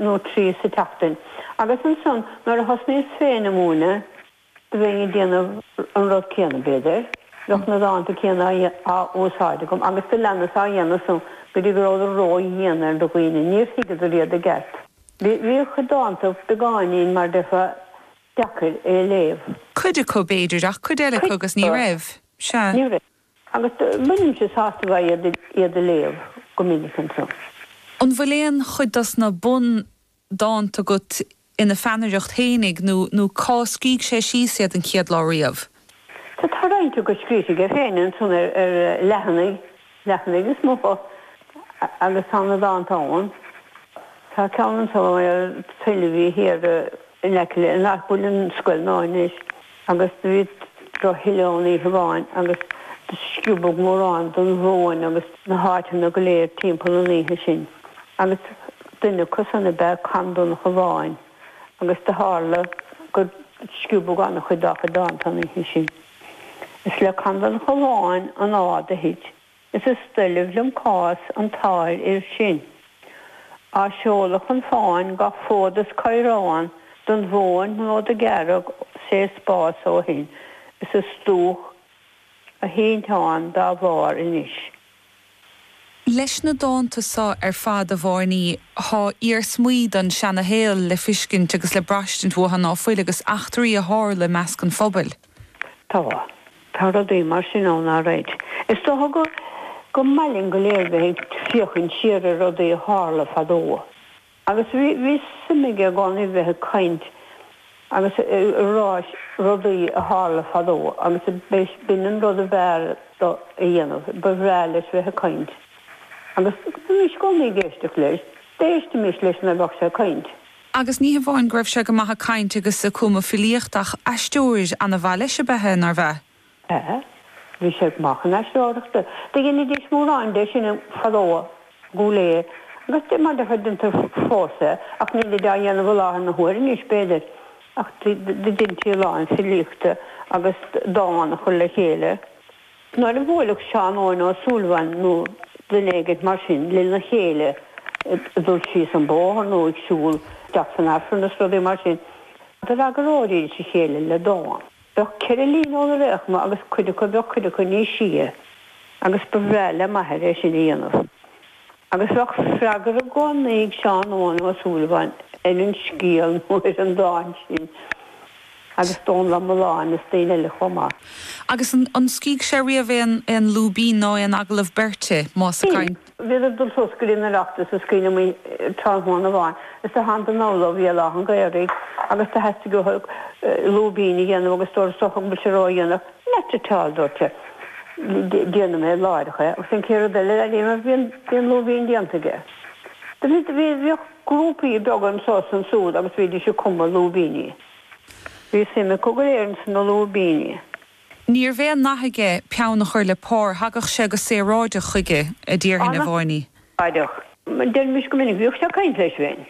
nó trí sa tseachtain, agus ansan nuair a thosnaíos féin a mhúineadh, do bheinn ag déanamh an rud céanna, b'fhéidir, bheadh na dánta céanna á úsáid agam, agus do leanas á dhéanamh san go dtí go rabhadar ró-dhian ar do dhaoine, níor thuigeadar iad i gceart. Bhíodh na dánta beagáinín mar déarfá deacair a léamh. Cuid acu, b'fhéidir, ach cuid eile acu agus ní raibh. Sea. Ní raibh. Agus bhínnse sásta a bheith iad a léamh go minic ansan. An bhfuil aon chuid dos na bundánta agat ina pheannaireacht féin ag nó nó cá scríobh sé síos iad an chéad lá riamh? Tá tá roinnt agat scríofa aige féin ansan ar ar leathanaigh leathanaigh móra agus tá na dánta ann. Tá ceann ansan ar tuilleamh í thiar in aice le an áit a bhfuil an scoil nua anois. agus do bhí tuille ann oíche amháin agus do sciobadh mórán den mhóin agus na háiteanna go léir timpeall an oíche sin agus duine acu san ab ea Conn Donnchadha Bháin agus do tharla gur sciobadh an-chuid dá chuid dánta an oíche sin. Is le Conn Donnchadha Bháin an fháth do thit Is is doiligh liom cás an tsáirfhir sin a sheoladh chun fáin gach fód is caorán don mhóin úd do ghearraigh sé spás ó shin is is dúch a thinteán dá bharr anois. Leis na dánta so ar fad, a Bháirní, thá iarsmaí don seanashaol le fiscint agus le braistint uatha ná fuil agus eachtraí a tharla i measc an phobail. Tá. Tá rudaí mar sin ann, a Red. Is dócha go go maith linn go léir bheith ag féachaint siar ar rudaí a tharla fadó. Agus bhí, bhí suim aige i gcónaí bheith ag caint agus a rá rudaí a tharla fadó agus b'in an rud ab fhearr dó a dhéanamh. Ba bhreá leis bheith ag caint. Agus bhímis i gcónaí ag éisteacht leis. D'éistimis leis nuair a bheadh sé ag caint. Agus ní hamháin go raibh sé go maith ag caint agus ag cumadh filíocht ach aisteoir ana-mhaith leis ab ea é, nárbh ea? Ea, bhí sé go maith chun aisteoireachta. Do dheinidís mórán de sin fadó go léir agus is maith le cuid acu fós é ach nílid á dhéanamh i láthair na huaire anois b'fhéidir. Ach do deintí a lán filíochta agus dán a chur le chéile. Nuair a bhuailfeadh Seán Eoghain Ó Súilleabháin nó duine éigin mar sin lena chéile ag dul síos an bóthar nó ag siúl isteach san Aifreann is rudaí mar sin, d'fhreagróidís a chéile le dán. Bheadh ceithre líne nó rud éigin ann agus cuid acu bheadh cuid acu níos sia agus ba bhreá le m'athair é sin a dhéanamh. Agus bheadh freagra i gcónaí ag Seán Eoin Ó Súilleabháin ar an scéal nó ar an dán sin, agus Dónall Ó Mulláin is daoine eile chomh maith. Agus an scrígh sé riamh aon lúibín ná aon agallamh beirte, más ag caint? Bhíodar ag dul suas go dtí an Oireachtas is cuimhin liom tráthnóna amháin is do thánadar anall ó Bhéal Átha an Ghaorthaidh, agus do theastaigh uathu lúibín a dhéanamh agus dúradh, 'Is dócha go bhfuil sé ródhéanach. Not at all, dúirt sé. Déanfaidh mé láithreach é, agus an chéad rud eile a dhéanadh, bhí an lúibín déanta aige. Do bhí, do bhí, bhíodh grúpaí beaga anso is ansúd agus bhídís ag cumadh lúibíní. Bhí suim acu go léir ins na lúibíní. Níorbh aon nath aige peann a chur le pár, thagadh sé go saoráideach chuige, a déarfainn, a Mháiní. An-saoráideach. Deirimis go minic, bhíodh sé ag caint leis féin.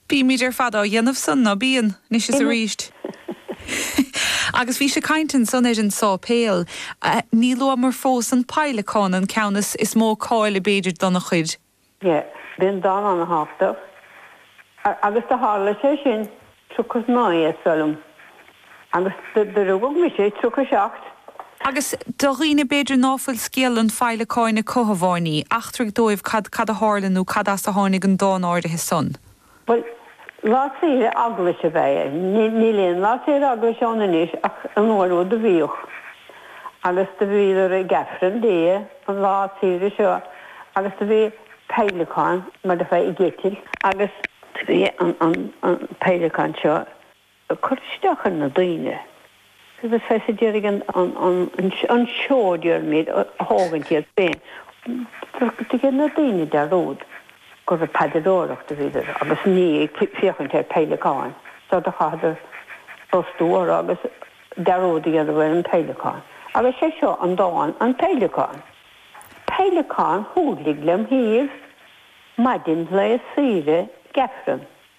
Bímid ar fad á dhéanamh san, ná bíonn? Anois is arís. Agus bhí sé ag caint ansan ar an sáipéal, níor luamar fós an peidhleacán, an ceann is is mó cáil b'fhéidir dona chuid. Yeah, b'in dán ana-thábhachtach. Agus do tharla sé sin, tríocha naoi is dóigh liom. Agus do rugadh mise tríocha seacht. Agus do dhaoine b'fhéidir ná fuil scéal an Pheidhleacáin acu, a Mháiní, eachtraigh dóibh cad cad a tharla nó cad as a tháinig an dán áirithe san. Bhuel, lá saoire eaglaise ab ea é. Níl aon lá saoire eaglaise ann anois ach an uair úd do bhíodh. Agus do bhíodar ag Aifreann Dé an lá saoire seo agus do bhí peidhleacán, mar a déarfá, ag eitilt, agus do bhí an peidhleacán seo ag cur isteach ar na daoine agus bheith ag iarraidh an seó dearmaid a thógaint iad féin. Dhein na daoine dearúd gur ag paidreoireacht a bhíodar agus ní ag féachaint ar peidhleacáin, so do chaitheadar brostú orthu agus dearúd a dhéanamh ar an bpeidhleacán. Agus sé seo an dán, An Peidhleacán. Peidhleacán a thúirlig lem thaobh maidin lae saoire ag Aifreann.